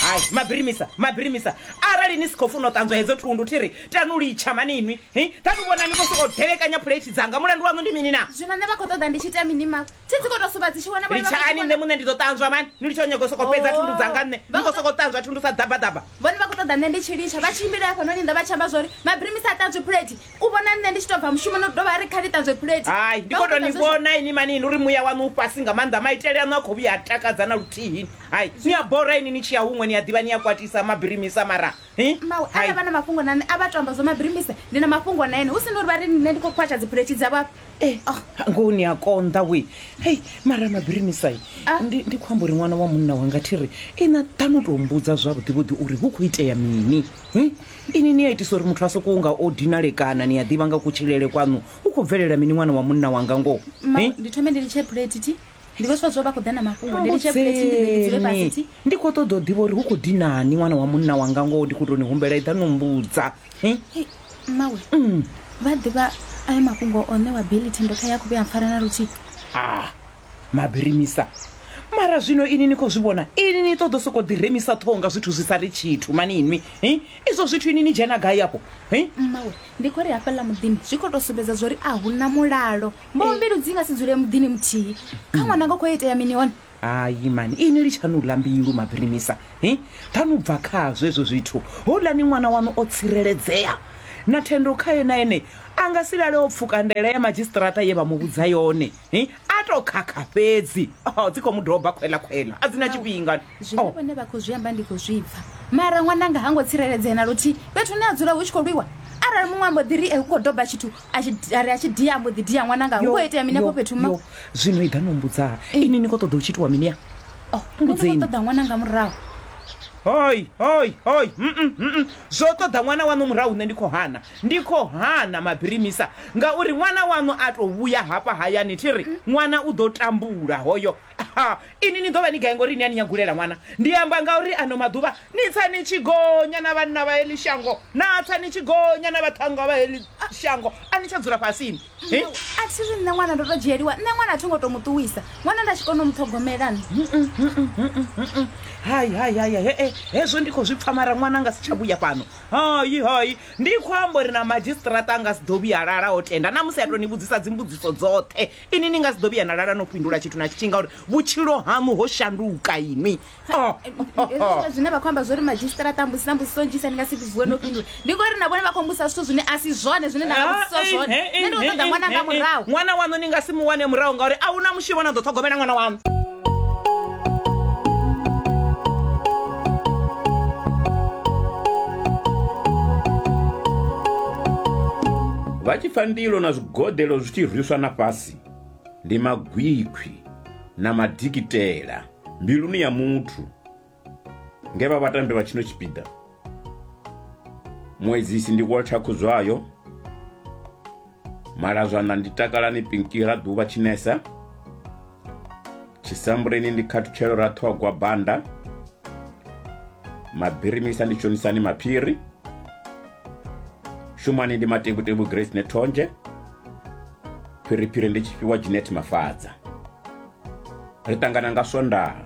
hai mabirimisa mabirimisa arali ni si khou funa u ṱanzwa hedzo thundu thi ri tanu litsha mani inwi hi tanu vhona ni khou sokou delekanya phuleithi dzanga mulandu waṋu ndi mini na zwino nṋe vha khou ṱoḓa ndi tshi ita mini mawe thi dzi khou tou suva dzi tshi wana litshani nṋe muṋe ndi ḓo ṱanzwa mani ni litsha u nyaga u sokou fhedza Oh. thundu dzanga nṋe ni khou sokou ṱanzwa thundu sa ḓabaḓaba vhone vha khou ṱoḓa nṋe ndi tshi litsha vha tshimbile hafhanoni nnḓa vha tshi amba zwa uri mabirimisa a ṱanzwi phuleithi u vhona nṋe ndi tshi to bva mushumoni u dovha a ri kha ni ṱanzwe phulethi hai ndi khou tou ni vhona ini mani ndi uri muya waṋu u fhasi nga maanḓa maitele aṋu a khou vhuya a takadza na luthihini hai ni a bora ini ni tshi ya huṅwe ni a ḓivha ni a kwatisa mabirimisa mara mawe arali vha na mafhungo na nṋe a vha to amba zwo mabirimisa ndi na mafhungo na ene hu si na uri vha ri nṋe ndi khou khwatsha dziphulethi dza vhafha eh, ah. ngoho ni a konḓa we hei mara mabirimisai ah. ndi khou amba uri ṅwana wa munna wanga thi ri ina ḓa no tou mbudza zwavhuḓivhuḓi uri hu khou itea mini hm? Inwi ni a itisa uri muthu a sokou nga o dinalekana ni a ḓivha nga kutshilele kwaṋu hu khou bvelela mini ṅwana wa munna wanga ngoho Ma, Eh? ndi thome ndi litshe plate ti ndi vho swa zwo vha khou ḓa na mafhungo ndi litshe plate ndi ḓe ndi dzule fhasi Mbudzeni. ti ndi khou ṱoḓa u ḓivha uri hu khou dinani ṅwana wa munna wanga ngoho ndi khou tou ni humbela i ḓa no mbudza Eh? Hei, mmawe vha ḓivha ayo mafhungo o ṋewa bili thendo kha ya khuvhe a mpfara na luthihi ah Mabirimisa, Mara zwino ini ni khou zwi vhona? Ini ni ṱoḓo sokou ḓi remisa ṱhoho nga zwithu zwi sa ri tshithu mani inwi. Hi, izwo zwithu ini ni dzhena gai afho? Hi. Mmawe, ndi khou ri hafhaḽa muḓini zwi khou tou sumbedza zwo ri a hu na mulalo. Mboho mbilu dzi nga si dzule muḓini muthihi. Kha ṅwana nga khou itea mini hone? Hayi mani, ini litshaṋu u ḽa mbilu Mabirimisa. Hi, ṱhanu bva khazwo hezwo zwithu. Houḽani ṅwana waṋu o tsireledzea. Na thendo khae na ene a nga si lale o pfuka ndaela ya madzhisiṱiraṱa ye vha mu vhudza yone. hi a to khakha fhedzi oh, dzi khou mu doba khwela khwela a dzi na tshifhinga zwine oh. vhone vha khou zwi amba ndi khou zwi pfa mara ṅwananga ha ngo tsireledzea na luthihi fhethu ne a dzula hu tshi khou lwiwa arali muṅwe ambo ḓi ri e hu khou doba tshithu ari a tshi dia ambo ḓi dia ṅwananga hu khou itea mini afho fhethu ma zwino i ḓa no mbudza eh. ini ni khou ṱoḓa u tshi itiwa mini ya oh, mbudzeini ṱoḓa ṅwananga murahu hoi hoi hoi zwo ṱoḓa ṅwana waṋu murahu nṋe ndi khou hana Ndi khou hana mabirimisa ngauri ṅwana waṋu a tou vhuya hafha hayani thi ri, Ṅwana u ḓo tambula hoyo. Ha, inwi ni ḓo vha ni gai ngauri ni a ni nyagulela ṅwana? Ndi amba ngauri ano maḓuvha ni tsa ni tshi gonya na vhanna vha heḽi shango, na tsa ni tshi gonya na vhaṱhannga vha heḽi shango, a ni tsha dzula fhasini. He. A thi ri nṋe ṅwana ndo tou dzhieliwa, nṋe ṅwana a tho ngo tou mu ṱuwisa, ṅwana nda tshi kona u mu ṱhogomela nṋe. Hai, hai, hai, hai, he-e, hezwo ndi khou zwi pfa mara ṅwana a nga si tsha vhuya fhano. hayi hayi ndi khou amba uri na madzhisiṱiraṱa a nga si ḓo vhuya lala o tenda na musi a tou ni vhudzisa dzimbudziso dzoṱhe ini ni nga si ḓo vhuya na lala no fhindula tshithu na tshitshi ngauri vhutshilo haṋu ho shanduka ini oh, oh, oh. zwine vha khou amba zwo ri madzhisiṱiraṱa mbusi na mbudziso nnzhisa ni nga si vhuwe no fhindula ndi ngori na vhone vha khou mbusa zwithu zwine a si zwone zwine nda vhudzisa ah, zwone nṋe ndi u ṱoḓa ṅwana nga murahu ṅwana waṋu ni nga si mu wane murahu ngauri a hu na mushumo na ḓo ṱhogomela ṅwana waṋu vha tshi pfa ndilo na zwigodelo zwi tshi rwiswa na fhasi ndi magwikhwi na madikitela mbiluni ya muthu Nge vha vhatambi vha tshino tshipiḓa muedzisi ndi Walter Khuzwayo, Malazwana ndi Takalani Pinki Raḓuvha Tshinesa, Tshisambuleni ndi Khathutshelo Raṱhogwa Banda, Mabirimisa ndi Tshonisani Maphiri, Shumani ndi Matevhutevhu Grace Nethonzhe, Phiriphiri ndi Tshifhiwa Jeanette Mafadza. Ri ṱangana nga Swondaha.